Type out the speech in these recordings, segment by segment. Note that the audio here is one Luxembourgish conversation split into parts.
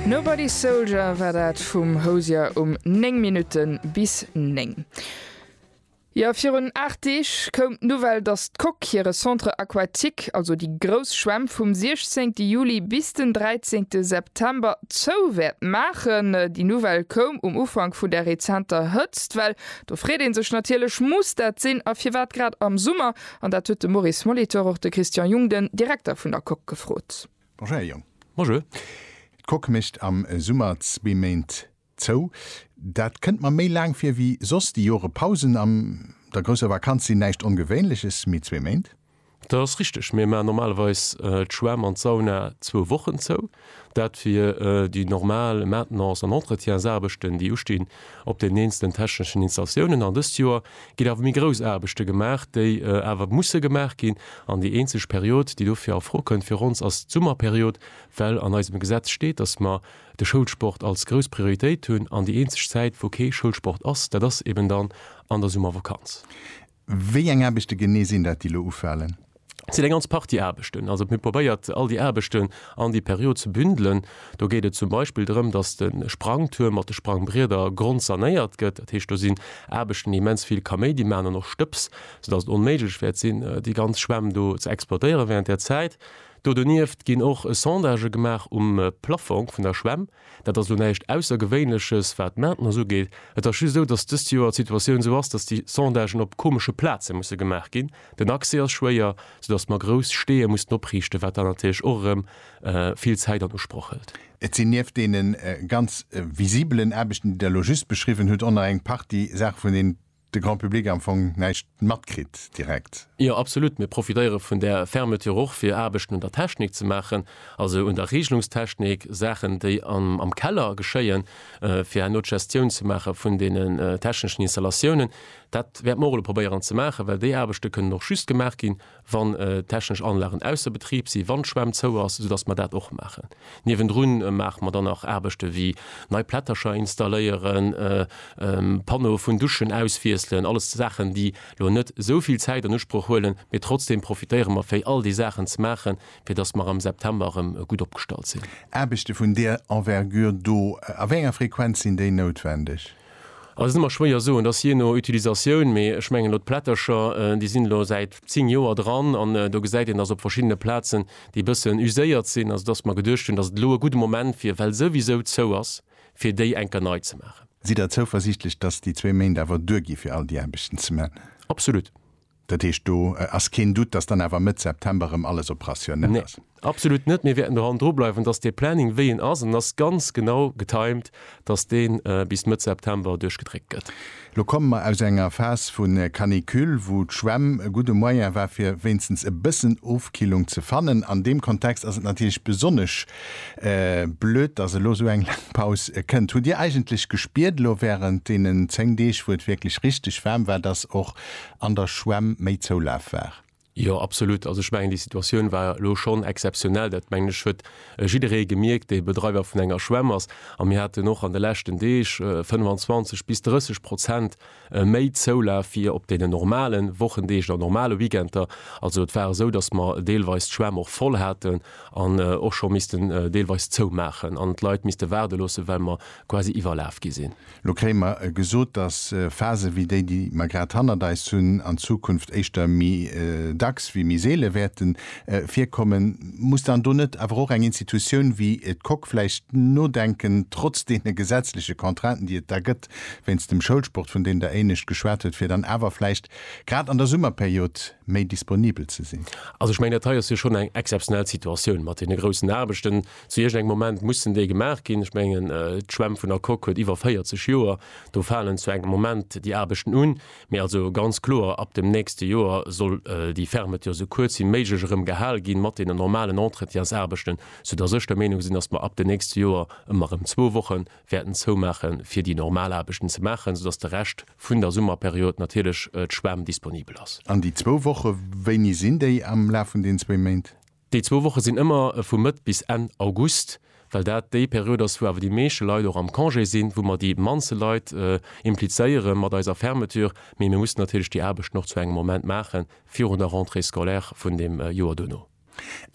Nobody's Soldier war dat vum Hozier um 9 Minutten bis 9. Jo, virun 8 Deeg koum d'Nouvelle, datt d'Coque hire Centre Aquatique, also déi grouss Schwämm, vum 16 Juli bis den 13 September zou wäert maachen. Déi Nouvelle koum um Ufank vun der rezenter Hëtzt. Well do freet ee sech natierlech, muss dat sinn? A firwat grad am Summer? An dat huet de Maurice Molitor och de Christian Jung, den Direkter vun der Coque, gefrot. Bonjour, Här Jung. Bonjour. D'Coque mécht am Summer zwee Méint zou. Dat kënnt mer méi laang vir wéi soss. Déi Jore Pausen an der grousser Vakanz sinn näischt Ongewéinleches, mee zwee Méint? Dat ass richteg. Mir maachen normalerweis d'Schwämm an d'Sauna zwou Wochen zou. Dat fir déi normal Maintenance an Entretiensaarbechten, déi ustinn op den eenzelnen techneschen Installatiounen. An dëst Joer ginn awer méi grouss Aarbechte gemaach, déi awer musse gemaach ginn. An déi eenzeg Period, déi dofir a Fro kënnt fir ons, ass d'Summerperiod, well an eisem Gesetz steet, dass mer de Schoulsport als grouss Prioritéit hunn. An déi eenzeg Zäit, wou kee Schoulsport ass, dat ass eben dann an der Summervakanz. Wéi eng Aarbechte genee sinn dat, déi elo ufalen? Et sinn eng ganz Partie Aarbechten. Also, mir hu probéiert, all déi Aarbechten an déi Period ze bündelen. Do geet et zum Beispill drëm, dass de Sprangtuerm mat de Sprangbrieder grondsanéiert gëtt. Dat heescht, do sinn Aarbechten, déi immens vill Kaméidi maachen an och Stëbs, soudass et onméiglech wäert sinn, déi ganz Schwämm do ze exploitéieren wärend där Zäit. Do donieft ginn och Sondagë gemaach um Plaffong vun der Schwämm. Dat ass lo näischt Aussergewéinleches, wat d'Maintenance ugeet. Et ass just esou, datt dëst Joer d'Situatioun esou ass, datt déi Sondagen op komesche Plaze musse gemaach ginn. Den Accès ass schwéier, soudatt mer grouss Steeë mussen opriichten, wat dann natierlech och erëm vill Zäit an Usproch hëlt. Et sinn nieft deene ganz visibelen Aarbechten, déi Der elo just beschriwwen hutt, och nach eng Partie Saache vun deenen, de Grand Public am Fong näischt matkritt direkt. Jo, absolut. Mir profitéiere vun där Fermeture och, fir Aarbechten un der Technik ze maachen, also un der Regelungstechnik, Saachen, déi am Keller geschéien, fir herno d'Gestioun ze maache vun deene techneschen Installatiounen. Dat wäerte mer och elo probéieren ze maachen, well déi Aarbechte kënnen och just gemaach ginn, wann technesch Anlagen ausser Betrib sinn, wann d'Schwämm zou ass, soudass mer dat och maachen. Niewendrun maache mer dann nach Aarbechte wéi nei Plättercher installéieren, Panneaue vun Duschen auswiesselen, alles Saachen, déi elo net esou vill Zäit an Usproch huelen, mee trotzdeem profitéiere mer fir all déi Saachen ze maachen, fir dass mer am September erëm gutt opgestallt sinn. Aarbechte vun där Envergure do, a wéi enger Frequenz sinn déi noutwendeg? Ass et ëmmer schwéier soen, dass jee no Utilisatioun, mee ech mengen elo d'Plättercher, déi sinn elo säit 10 Joer dran an do gesäit een, dass op verschiddene Plazen déi e bëssen uséiert sinn, also dass mer geduecht hunn, dass et elo e gudde Moment wier, well souwisou zou ass, fir déi eng Kéier nei ze maachen. Sidd Der zouversiichtlech, dass déi zwee Méint awer duergi fir all déi Aarbechten ze man? Absolut. Dat heescht, do ass keen Doute, dass dann awer Mëtt September erëm alles operationell ass? Nee, absolut net. Mir wäerten doran drubleiwen, dass dee Planning, wéi en ass, an en ass ganz genau getimed, dass dee bis Mëtt September duerchgedréckt gëtt. Elo komme mer aus enger Phas vu Canicule, wou d'Schwämm e gudde Moyen war, fir wéinstens e bëssen Ofkillung ze fannen. An deem Kontext ass et natierlech besonnesch blöd, dass elo esou eng laang Paus kënnt. Hutt Dir eigentlech gespiert elo wärend deenen zéng Deeg, wou et wierklech richteg waarm war, dass och an der Schwämm méi Zoulaf war. Jo, absolut. Also ech mengen, déi Situatioun war elo schonn exzeptionell. Dat mengen ech huet jidderee gemierkt, dee Bedreiwer vun enger Schwämm ass. A mir haten och an de leschten Deeg 25 bis 30 Prozent méi Zoulaf wéi op deenen normale Wochendeeg oder normale Weekender. Also et war esou, datt mer deelweis d'Schwämm och voll haten an och scho missten deelweis zoumaachen an d'Leit misste waarde loossen, well mer quasi iwwerlaf gi sinn. Lo kréie mer gesot, dass Phase wéi déi, déi mer grad hannert eis hunn, an Zukunft éischter méi dacks wéi méi seele wäerte virkommen. Muss dann do net awer och eng Institutioun wéi d'Coque vläicht nodenken, trotz deene gesetzleche Contrainten, déi et da gëtt wéinst dem Schoulsport, vun deem Der éinescht geschwat hutt, fir dann awer vläicht grad an der Summerperiod méi disponibel ze sinn? Also ech mengen, dat hei ass jo schonn eng exzeptionell Situatioun mat deene groussen Aarbechten, Zu iergendengem Moment mussen déi gemaach ginn. Ech mengen, d'Schwämm vun der Coque huet iwwer 40 Joer. Do falen zu engem Moment déi Aarbechten un. Mee also ganz kloer, ab dem nächste Joer soll déi Fermeture esou kuerz wéi méiglech erëm gehal ginn, mat deenen normalen Entretiensaarbechten, soudass ech der Meenung sinn, datt mer ab de nächste Joer ëmmer erëm zwou Woche wäerten zoumaache fir déi normal Aarbechten ze maachen, soudatt de Rescht vun der Summerperiod natierlech d'Schwämm disponibel ass. An déi zwou Woche, wéini sinn déi am Laf vun deenen zwéi Méint? Déi zwou Woche sinn ëmmer vu Mëtt bis Enn August, well dat déi Period ass, wou awer déi meeschte Leit och am Congé sinn, wou mer déi mannste Leit implizéiere mat eiser Fermeture. Mee mir mussen natierlech déi Aarbechten och zu engem Moment maache virun der Rentrée scolaire vun dem Joer duerno.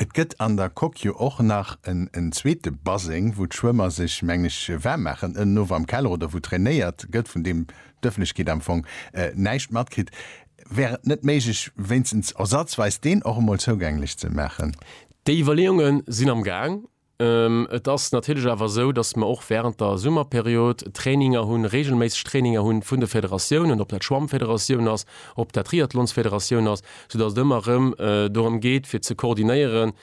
Et gëtt an der Coque jo och nach en zweete Baseng, wou d'Schwëmmer sech, mengen ech, waarm maachen, ënnenof am Keller, oder wou trainéiert gëtt, vun deem d'Ëffentlechkeet am Fong näischt matkritt. Wär et net méiglech, wéinstens ersazweis deen och emol zougänglech ze maachen? Déi Iwwerleeunge sinn am Gaang. Et ass natierlech awer esou, datt mer och wärend der Summerperiod Traininger hunn, reegelméisseg Traininger hunn vun de Federatiounen, ob dat d'Schwammfederatioun ass, ob dat d'Triathlonsfederatioun ass, soudatt et ëmmer erëm dorëm geet, fir ze koordinéieren,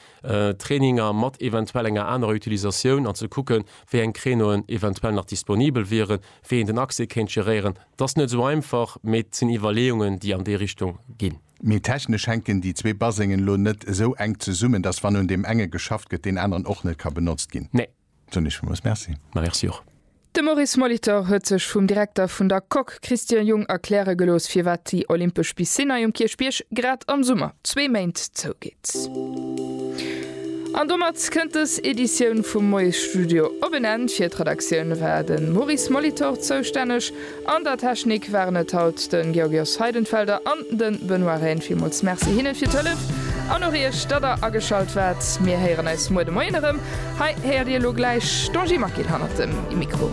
Traininger mat eventuell enger anerer Utilisatioun an ze kucken, wéi eng Créneauen eventuell nach disponibel wieren, wéi een den Accès kéint geréieren. 't ass net sou einfach, mee 't sinn Iwwerleeungen, déi an déi Richtung ginn. Mee technesch hänken déi zwee Basengen elo net esou enk zesummen, dass wann un deem enge geschafft gëtt, deen aneren och net ka benotzt ginn. Nee. Soen ech villmools Merci. Merci och. De Maurice Molitor huet sech vum Direkter vun der Coque Christian Jung erkläre gelooss, firwat déi olympesch Piscine hei um Kierchbierg grad am Summer zwee Méint zougeet. An domat kënnt dës Editioun vum Moiesstudio op en Enn. Fir d'Redaktioun war de Maurice Molitor zoustänneg. An der Technik waren et haut de Georgios Heidenfelder an de Benoît Rehn. Villmools Merci hinne fir d'Hëllef an och iech, datt der ageschalt waart. Mir héieren eis muer de Moien erëm. Hei héiert Dir elo gläich d'Angie Maquil hanner dem Mikro.